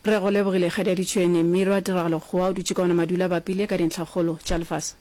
Re go lebogile Kgadi ya Ditšhwene, Mmiro a Tiragalo Kgowa o dutše ka ona madula a bapile ka dintlhakgolo tša lefase.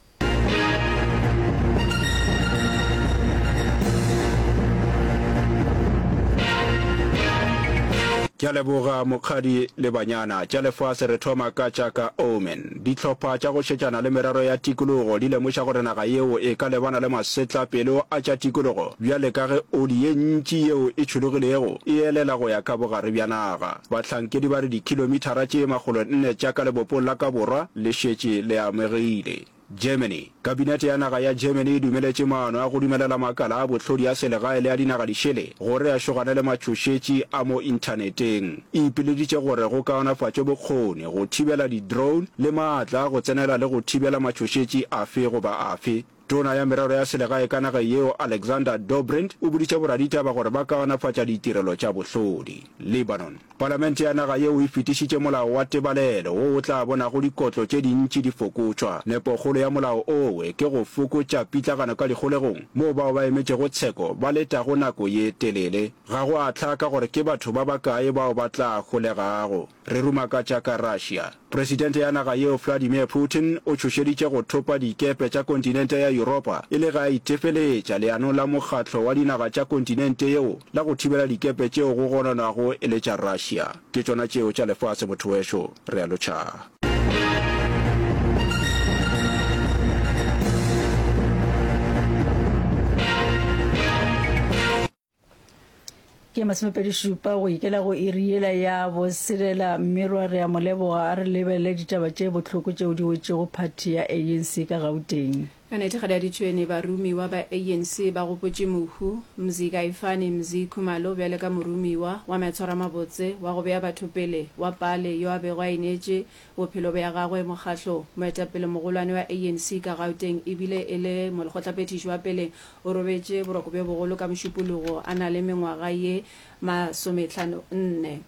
Ke a leboga mokgadi le banyana tša lefase re thoma ka tša ka Omen. Dihlopha tša go šetšana le merero ya tikologo di lemoša gore naga yeo e ka lebana le masetlapelo a tša tikologo bjale ka ge oli ye ntši yeo e tšhologilego e elela go ya ka bogare bja naga. Bahlankedi ba re dikhilomithara tše makgolo nne tša ka lebopong la ka borwa le šetše le amegile. Germany. Kabinete ya naga ya Germany e dumeletše maano a go dumelela makala a bohlodi a selegae le a dinaga di šele gore a šogane le matšhošetši a mo inthaneteng. E ipileditše gore go kaonafatšwe bokgoni, go thibela di-drone le maatla a go tsenela le go thibela matšhošetši afe goba afe. Tona ya merero ya selegae ka nageng yeo Alexander Dobrindt o boditše boraditaba gore ba kaonafatša ditirelo tša bohlodi. Lebanon. Palamente ya naga yeo e fetišitše molao wa tebalelo wo o tla bonago dikotlo tše dintši di fokotšwa. Nepokgolo ya molao owe ke go fokotša pitlagano ka dikgolegong, moo bao ba emetšego tsheko ba letago nako ye telele. Ga go a hlaka gore ke batho ba bakae bao ba tla holegago. Re rumakatša ka Russia. Presidente ya naga yeo Vladimir Putin o tšhošeditše go thopa dikepe tša kontinente ya Yuropa e le ge a itefeletša leanong la mokgatlo wa dinaga tša kontinente yeo la go thibela dikepe tšeo go gononwago e le tša Russia. Ke tšona tšeo tša lefase motho wešo, realo Cha. ke masomepedi šupa go ikela go iri yela ya boselela mmerwa re a mo leboga a re lebelele ditaba tše bohloko tšeo di wetšego phathi ya anc ka gauteng Anete Gadaditšhwene Baromiwa ba ANC ba gopotše Mohu Mzi Kaifani Mzi Khumalo bjale ka moromiwa wa matshwaramabotse wa go bea batho pele wa Pale yo a bego a ineetše Bophelo bja gagwe mokgahlo, moetapelemogolwane wa ANC ka Gauteng e bile e le molekgotlaphethiši wa pele, o robetše boroko bjo bogolo ka Mošupologo a na le mengwaga ye masometlhano nne.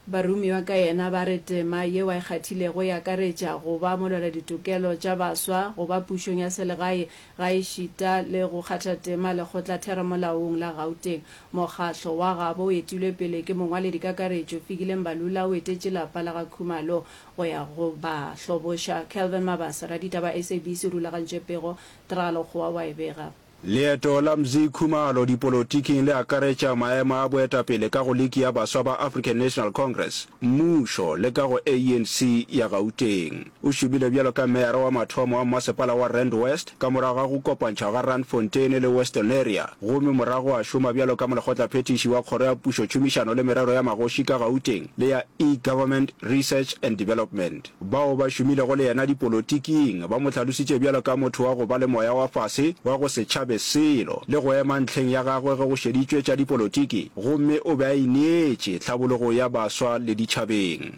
Baromiwa ka yena ba re tema yeo a e kgathilego e akaretša go ba molwela ditokelo tša baswa, go ba pušong ya selegae Gaešita le go kgatha tema lekgotlatheramolaong la Gauteng, mokgatlo wa gabo o etilwe pele ke mongwaledikakaretšo Fikile Mbalula o etetše lapa la ga Khumalo go ya go ba hloboša. Kelvin Mabase, raditaba SABC o rulagantše pego, Tra Lokgowa wa e bega. Leeto la Mzi Khumalo dipolotiking le akaretša maemo a boetapele ka go Liki ya Baswa ba African National Congress, mmušo le ka go ANC ya Gauteng. O šomile bjalo ka meyara wa mathomo wa mmasepala wa Rand West ka morago ga go kopantšhwa ga Randfontein le Western Area gomme morago a šoma bjalo ka molekgotlaphethiši wa Kgoro ya Pušo Tšhomišano le Merero ya Magoši ka Gauteng le ya E-Government Research and Development. Bao ba šomilego le yena dipolotiking ba mo hlalositše bjalo ka motho wa go ba le moya wa fase wa go se tšhabe selo le go ema ntlheng ya gagwe ge go šeditšwe tša dipolotiki gomme o be a ineetše tlhabologong ya baswa le ditšhabeng.